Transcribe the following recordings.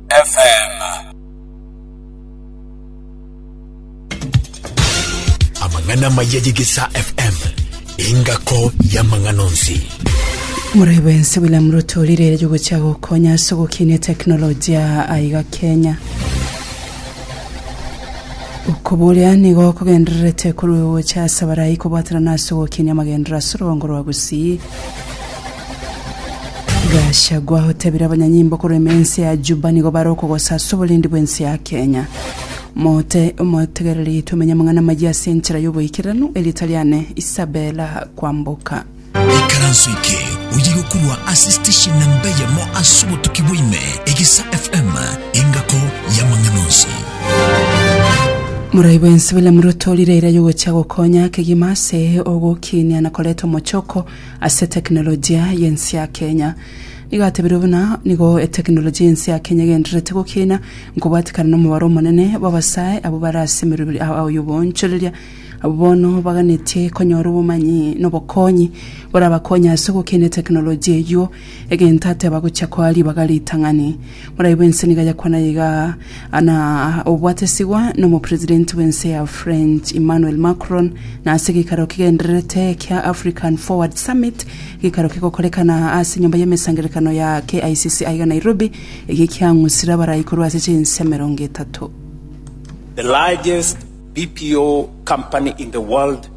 FM. Amang'ana maya y'Egesaa FM, engako y'amang'ana onsi. Muraibu ense William Ruto rirere ryogochia gokonya ase ogokinia teknolojia aiga Kenya. Okoboria nigo kogendererete korwa gocha ase abarai kobwatanana ase ogokinia amagendero ase orwongo rwa Gusii. Gachagua otebire abanyanyimbo korema ense ya Juba nigo bare okogosasa oborendi bw'ense ya Kenya. Mote omotegereri tomenye amang'ana amayia ase enchera y'oboikeranu erieta riane Isabella Kwamboka. ikaranso eke oye gokorwa ase station namba eyemo ase obotuki bwaime egesa fm engako yamang'ana onsi Morai bwensi William Ruto rire eira yogocha gokonya kegima ase ogokinia na koreta omochoko Ase tekinolojia y'ense ya Kenya. Nigo atebirio buna nigo etekinolojia y'ense ya Kenya egendererete gokina nkobwatekana nomobaro omonene bw'abasae abwo bare ase emeroberi ao y'oboonchoreria, abwo bono baganetie konyora obomanyi nobokonyi borabakonye ase gokina etekinolojia eyio Egento ateba gochia koa ribaga ritang'ani. Morai bwense niga yakwana iga na obwatesigwa nomopresident bwense ya French Emmanuel Macron na ase geikaro kigendererete kia African Forward Summit geikaro kigokorekana ase enyomba y'emesangererekano ya KICC aiga Nairobi ege kiang'usire abarai korwa ase chinse emerongo etato. The largest BPO company in the world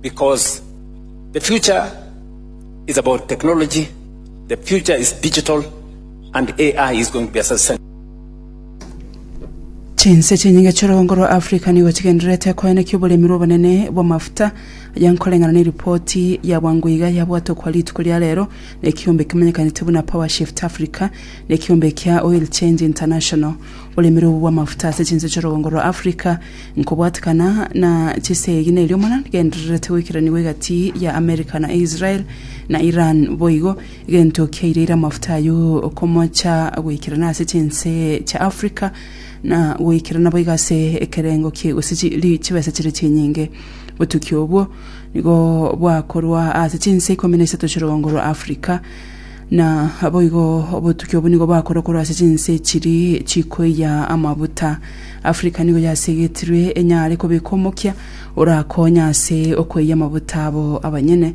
Because the future is about technology, the future is digital, and AI is going to be a substantial Chinse chinyinge chi'orogongo rwa Africa nigo chigendererete koenekia oboremi rw'obonene bw'amafuta, aya nkoreng'ana neripoti ya bwango iga yabwatwa kwa rituko ria rero nekiombe kimanyekanete buna Powershift Africa nekiombe kia Oil Change International. Oboremi obo bw'amafuta ase chinse chi'orogongo rwa Africa Nkobwatekana na chisegi nerio mana nigendererete goikaranigwa egati ya America na Israel na Iran boigo, egento kiaireire amafuta ayio okomocha goikerana ase chinse chia Africa na goikerana boigo ase ekerengo kie gose chi- ri- chibesa chire chinyinge. Botuki obwo nigo bwakorwa ase chinse ikomi na isato chi'orogongo rwa Africa, Na boigo obotuki obwo nigo bakorokorwa ase chinse echiri chikoiya amabuta. Afrika nigo yasegetirwe enyare kobeka omokia orakonye ase okoiya amabuta abo abanyene.